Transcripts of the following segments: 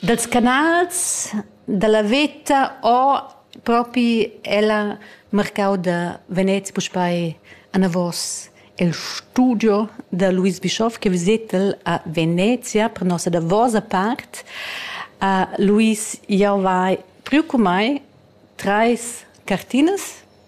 Dals canals da la veta ho propi ella marcau da Venez puspei anavos il studio da Luis Bischoff che visetel a Venezia per nossa davosa part. Uh, Luis, jau vai priu cun mei treis cartinas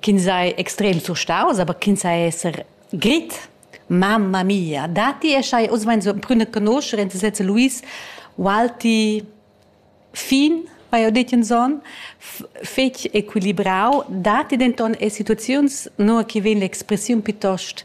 ch'ins ei extrem surstaus, aber ch'ins ei esser grit. Mamma mia, dati e schai, oz mein so prüne conoscer in sezze Luis Walti fin vai ho detto in son fetg equilibrau dati denton e situaziuns no che vegn l'expressiun piuttost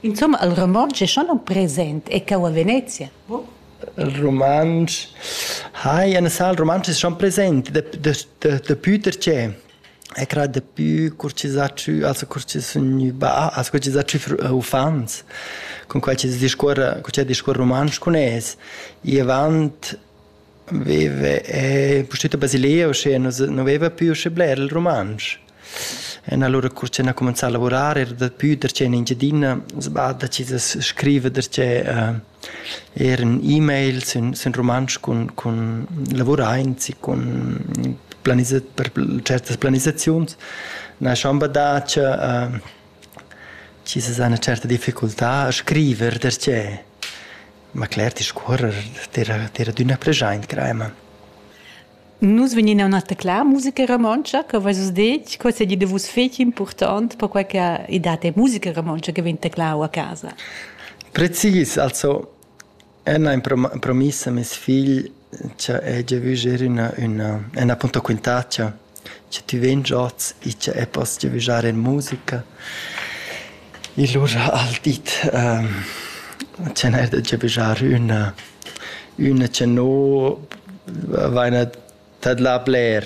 Insumma, il romontsch è schon aunc present e cheu a Venezia, buc? Il romontsch hai ein sal romontsch è schon present da da da daplü perche e crà daplü cur chi s'ha tschü also cur chi sun gnü bah, also cur chi s'ha tschü uffants cun quai chi discuorra cur chi ha discuorra romontsch cun es. I avant veva e pustüt a Basilea uschè nu nu veva più uschè bler il romontsch. En allura cur che ha cumenzà a lavurar era daplü der che in Engiadina, sba decis da scriver der che uh, er in e-mail sin, sin rumantsch cun, cun lavuraints e cun planizat per certas planisaziuns. Na schon badà che uh, ci se una certa difficoltà a scrivere perché ma cler ti scorrer tira tira d'una pregiaint crema Nus vegnin a taclar musica romontscha, co veis vus detg, quei seigi da vus fetg impurtont, perquei che ei dat ei musica romontscha che vegn taclau a casa. Precis, also Anna ha promiss a mes figl che ella vuger una, una, un appunto quintaccia, che tu vegn oz e che poss vugiare in musica. I lura al di tgnair da giavischar üna üna cha no vaina tadlà bler.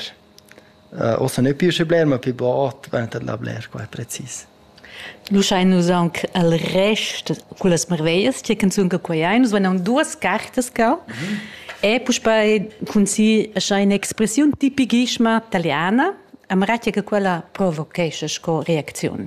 Ossa nu pü usché bler, ma pü bod vaina tadlà bler qua precis. Nu schain nus aunc al rest cullas marveglias tg'e canzun che quai ei. Nus vain aunc duos cartas cau e puspei cun si scha in'expressiun tipichissima taliana, amara tg'e che quella provochescha sco reacziun.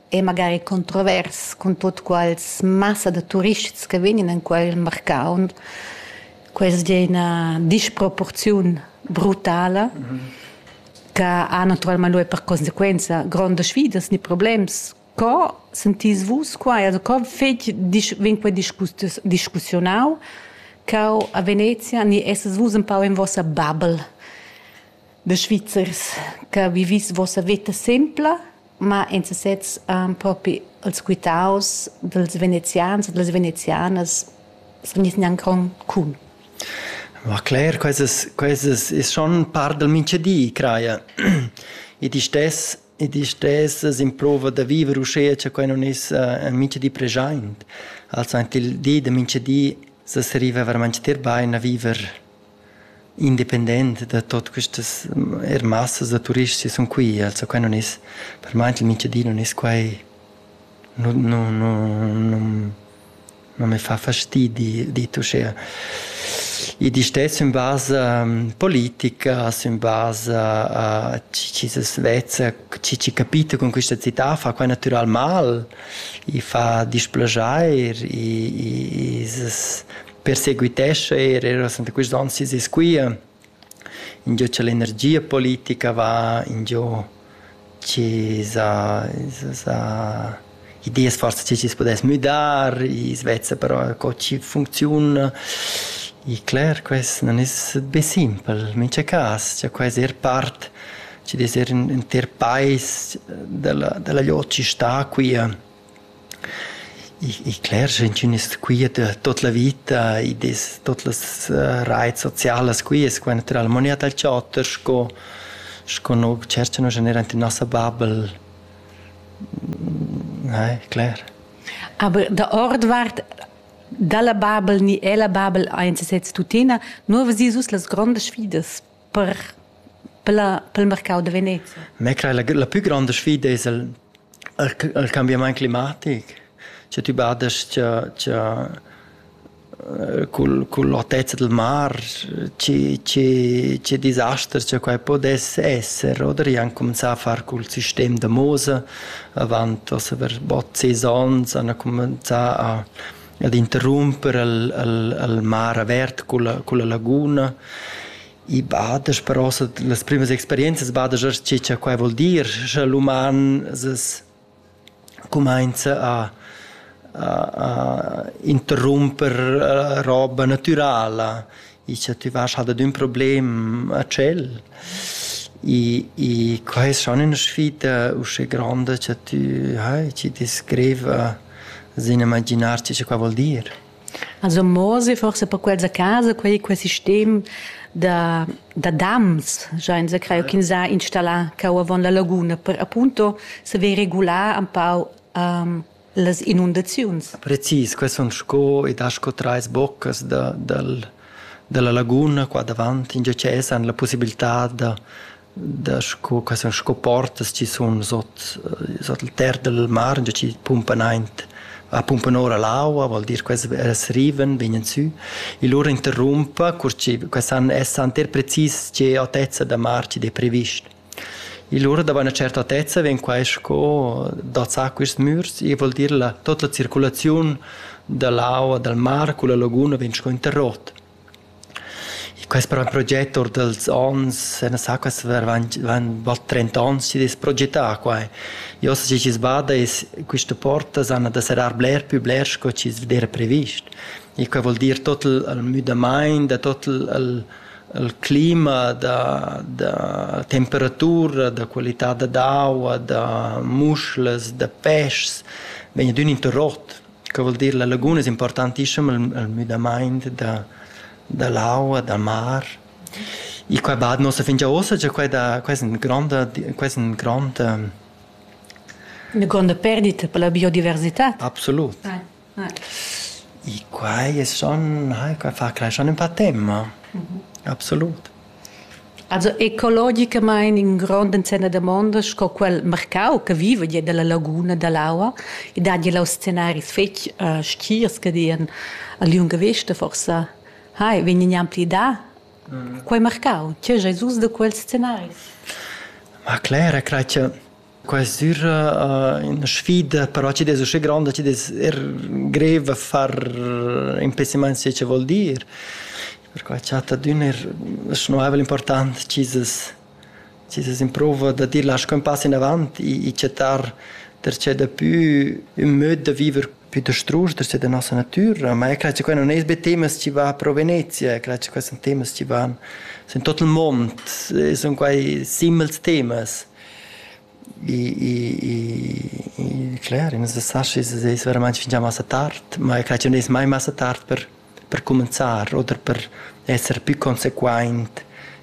è magari controvers cun tut quals massa da turists che vegnan en quel marcau. Quels di una disproporziun brutala mm -hmm. che ha naturalmente lui per conseguenza grandi sfidas ni problems. Co sentís vus qua? Also, co fetg vien quei discussionau cau a Venezia ni esses vus un pau in vossa bubble de Svizzers che vivis vossa vita sempla ma in sesez um, propi els quitaus dels venezians e das venezianas sun ins gnanc con cun. Ma Claire, quesas, quesas is schon par del minchedi, craia. e di stes, e di stes as improva da viver uschea cha quai non is uh, minchedi preschaint. Also ant il di da minchedi sa arriva veramente ter bain a viver independent da tot questas er massas da turists sun qui, also quai non es per mai il mincha di non es quai non non non non me fa fastidi dit uschea. I distess in basa politica, in basa a chi se svezza, chi ci capita con questa città fa quai natural mal, i fa displaschair, i, i, i perseguitescha er era santa quist on sis e squia ingio cha l'energia politica va ingio chi sa sa ideas forsa chi chi's pudess müdar i svezza però co chi funcziuna e cler quest non es be simpel in mincha cas cha quai es er part chi dess er ün inter pais della della gliot chi sta quia Ich ich clerscha intünas quieta tuot la vita id es tuot las rais socialas quias qua natüralmaing dal chater sco sco no tschercha no scha neir ant in nossa bubble. Nahe, cler. Aber der Ort wart dalla bubble ni ella bubble aint sesez tuttina, nu havas vis uss las grondas sfidas. per per pel mercau da vener. Me crei la, la pü gronda sfida es il, il, il cambiamaint climatic. Scha tü badast cha, cha äh, cul, cul otezza del mar, ci, ci, ci disasters cha quai podess esser, oder? I han comenzà a far cul sistem da Mose, avant, was aver bot saisons, han comenzà a ad interrumper al, al, al mar avert culla, culla laguna. I bada però las primas experienzas bada che cha quai vuol dir, scha l'uman es cumainza a a, a interrumper roba natürala Icha tüvasch halt ed ün problem a tschel. I i que es schon üna sfida usche gronda cha tü hai, chi descriv sin imaginarci cha qua voul dir. Also morsi forse per quels a casa quei quel sistem da da dams, già insa creo ch'ins ha installà cau avon la laguna per appunto saver regular un pau um, las inundaziuns. Precis, quels sun sco ed ha sco trais boccas da, dal, dalla laguna qua davant, in giacè san la possibilità da, da sco, quels sun sco portas chi sun sot, sot il ter del mar, già chi pumpan aint a pumpan ora l'aua, vuol dir quels as riven, vegnan sü, e lura interrumpa, cur chi quels han, essan ter precis che altezza da mar chi d'he previst. E lura da buna certatezza vegn quai sco dazzà quists mürs, e vuol dir la tuot la circulaziun da l'aua dal mar culla laguna vegn sco interrot. E quest proget our dals ons, na sa quas varvant van bot trenta ons chi'd es progetà quai. E ossa chi chi's bada es quista porta s'hana da serrar bler pü bler sco chi's d'eira previst. e quei vul dir tot il, il müdamaint, da tot il, il, il clima, da, da temperatura, da qualità da d'aua, da muschlas, da peschs, vegn ad ün interrot. Quei vul dir la laguna es importantissima il, il müdamaint da, da l'aua, da mar. E quei bad nossa fingia ossa, già quei da, quei è un grande, quei è un grande Eine grande Perdita per la biodiversità. Absolut. Ja. I quai sun hai quai fa creeschan ün pa temma. Absolut. Also ecologicamaing ün grond insem da damonda sco quel marcau che viva gia dalla laguna dall'aua e dat gia là scenaris fetg stgirs che dian a liunga vesta forsa hai vegn gnanc pli dà. Quei marcau, tgei ais us da quels scenaris? Ma cler, e crai che Quest'ura ina sfida, però chi'd es uschè gronda chi'd es er grev a far in pessimiant sai cha vuol dir. Perquai chat adüna er la schnuaivel important chi's es chi's es in prouva da dir lascho ün pass inavant e chattar darcheu dapü ün möd da viver Pütastrusch da da nossa natüra, ma io cret cha quai nun es be temas chi van pro Venezia, cret cha quai sun temas chi van sün tuot il mond, sun quai simils temas. I i i cler, i nu sa schi se es veramaint fingià massa tard, ma io cret chi nun es mai massa tard per per cumanzar oder per esser pü consequaint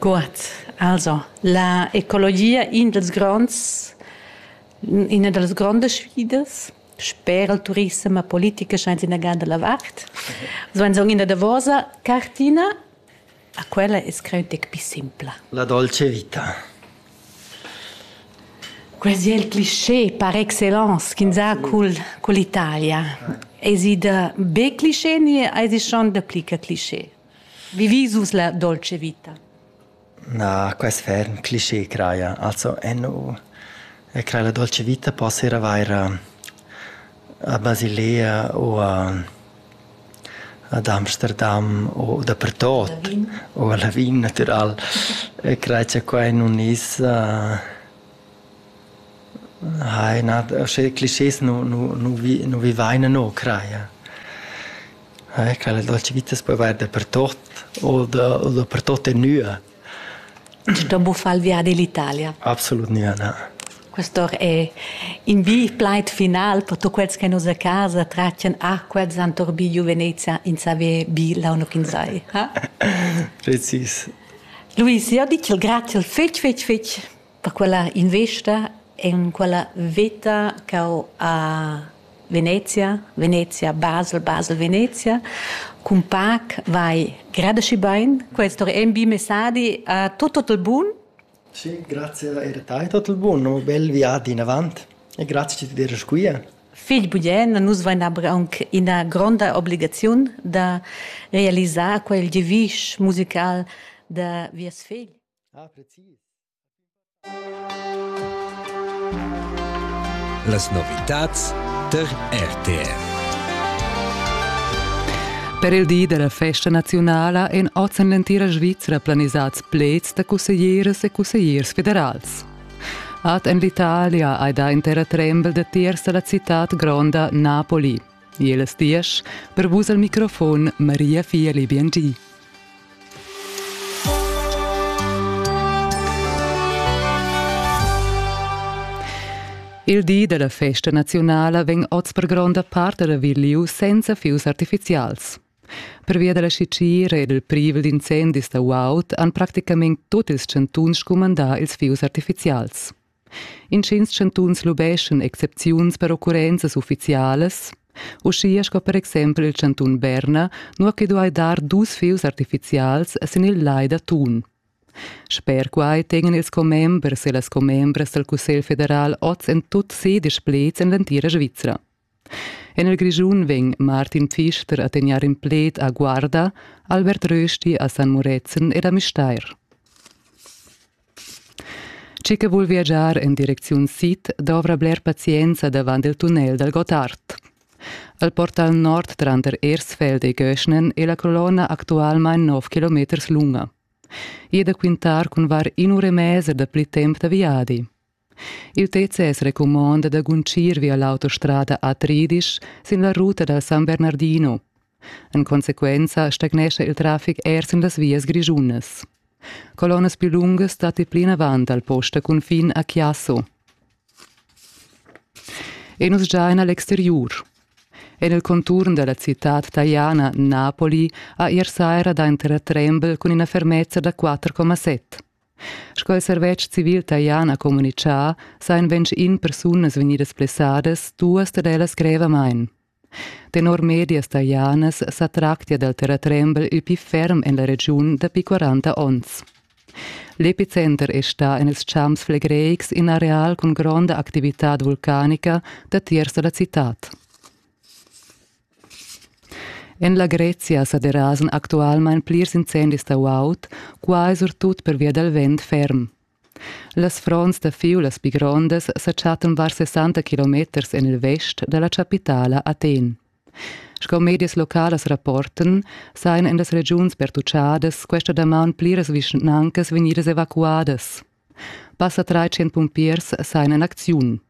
Gut, also la ecologia in dals gronds ina da las grondas sfidas sper il turissem e politica sainza ina gada la vart. So in son ina davosa cartina, a quella es creu tec pi simpla. La dolce vita. Quasi il cliché par excellence ch'inza cul, cull'Italia. Esi da be cliché ni esi schon da plica cliché? Vivis vus la dolce vita? Na, quest ferm cliché craja. Also, eno, e craja la dolce vita possera avair a, a Basilea o a, ad Amsterdam o dapertot. O a Lavin, natural. E craja qua in unis... Uh, Ai na, sche clischés nu nu nu vi nu vivaina no, craja. Eh quella dolce vita as po avair dapertot o da o dapertot e nua. Da buffar il viadi l'Italia? Absolut gnüa na. Questo è in vi plaid final per tuot quels che nus a casa traccian a quels han torbigliu Venezia in saver bi launo ch'in sai. Ha? Precis. Luis, io dic il grazie fetch fetch fetch Per quella investa en quella veta ch'ho a Venezia, Venezia, Basel, Basel, Venezia, cun pac vai gradesci bain. Questo è un bi messadi a tutto il buon. Sì, grazie a te tutto il buon, un bel viaggio in avanti e grazie di dir qui. Figl Buyen, nus vain aber aunc ina gronda obligaziun da realisar quel gevisch musical da vies figl. Ah, precis. Las novitads tar RTR. Per il di della festa nazionala èn oz en l'entira Svizra planisads pleds da cusseglieras e cussegliers federals. Ad en l'Italia hai dà intera trembel datiers da la citad gronda Napoli. E las diesch per vus al microfon Maria Fieli Biengi. Il di della festa nazionala vegn oz per gronda part revigliu senza fius artificials. Pervia della sicir ed il privel d'incendis da uaut han practicament tutti ils chantuns scumandà ils fius artificials. Intgins chantuns lubeschan excepziuns per occurrenzas uffizialas, uschia sco per exempel il chantun Berna, nua che duai dar dus fieus artifizials sin il lai da Thun. Sper quai tegnan ils commembers e las commembras dal Cussegl federal oz en tut ses displets en l'entira Svizra. En il Grischun vegn Martin Pfister a tegnair in pled a Guarda, Albert Rösti a San Murezzan ed a Müstair. Tgi che vul viagiar en direcziun sid dovra bler pazienza davant il tunnel dal Gottard. Al portal nord tranter Ersfeld e Göschnen è la colonna actualmain 9 km lunga. I è da quintar cun var in ura e mezza da pli temp da viadi. Il TCS recumonda da guntgir via l'autostrada A-Tridisch sin la ruta dal San Bernardino. En consequenza stagnescha il traffic er sin las vias grischunas. Colonnas più lunghe stati plinavant dal post da cunfin a Chiasso. E nus già en l'exteriur. En il conturn della città taiana Napoli ha ier saira da entrar trembel cun ina fermezza da 4,7. Sco il servetsch civil talian ha communitgà, sajan ventg in persunas vegnidas blessadas, duas dad ellas grevamain. Tenor medias talianas sa tractia dal terratrembel il pli ferm en la regiun dapi 40 onns. L'epicenter è stà en ils champs flegreics in areal cun gronda activitad vulcanica datiers da la citad. En la Grezia sa derasan actualmain plirs incendis da guaud, quai surtut pervia dal vent ferm. Las fronts da fiulas pli grondas sa chattan var 60 kilometers en il vest da la chapitala Athen. Sco medias localas rapportan, sajan en las regiuns pertuchadas questa damaun pliras vischnancas vegnidas evacuadas. Passa 300 pumpiers sajan en acziun.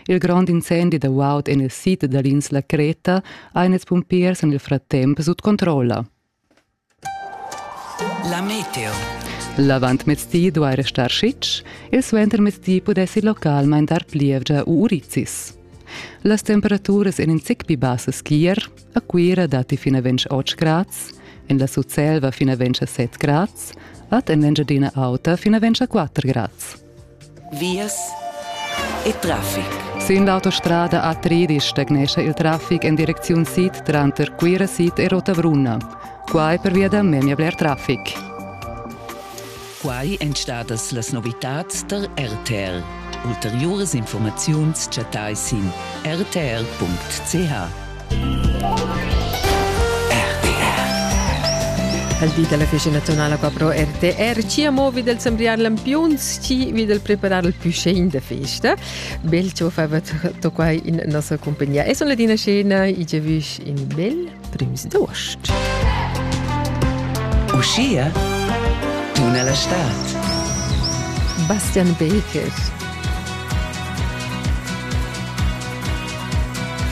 Il grond incendi da guaud en il sid da l'insla Creta han ils pumpiers en il fratemp sut controlla. La meteo. L'avantmezdi duai restar sitg, il suentermezdi pudessi localmain dar plievgia u urizis. Las temperaturas en in zic pli bassas ch'ier, a Cuira datti fin a 28 grads, en la Sutselva fin a 27 grads, ad en l'Engiadina Auta fin a 24 grads. Vias e traffic. Sin l'autostrada a Tridisch stagnescha il traffic en direcziun sid tranter Cuira sid e Rotabrunna. Quai pervia da memia bler traffic. Quai èn stadas las novitads tar RTL. Ulteriuras informaziuns chattai sin rtl.ch. al di dalla festa nazionale qua pro RTR ci amo vi del sembriar lampiuns ci vi del preparar il più scene de festa bel ci fa to qua in nostra compagnia e son le dina scena i ge vusch in bel prims d'ost Uscia tuna la stad Bastian Baker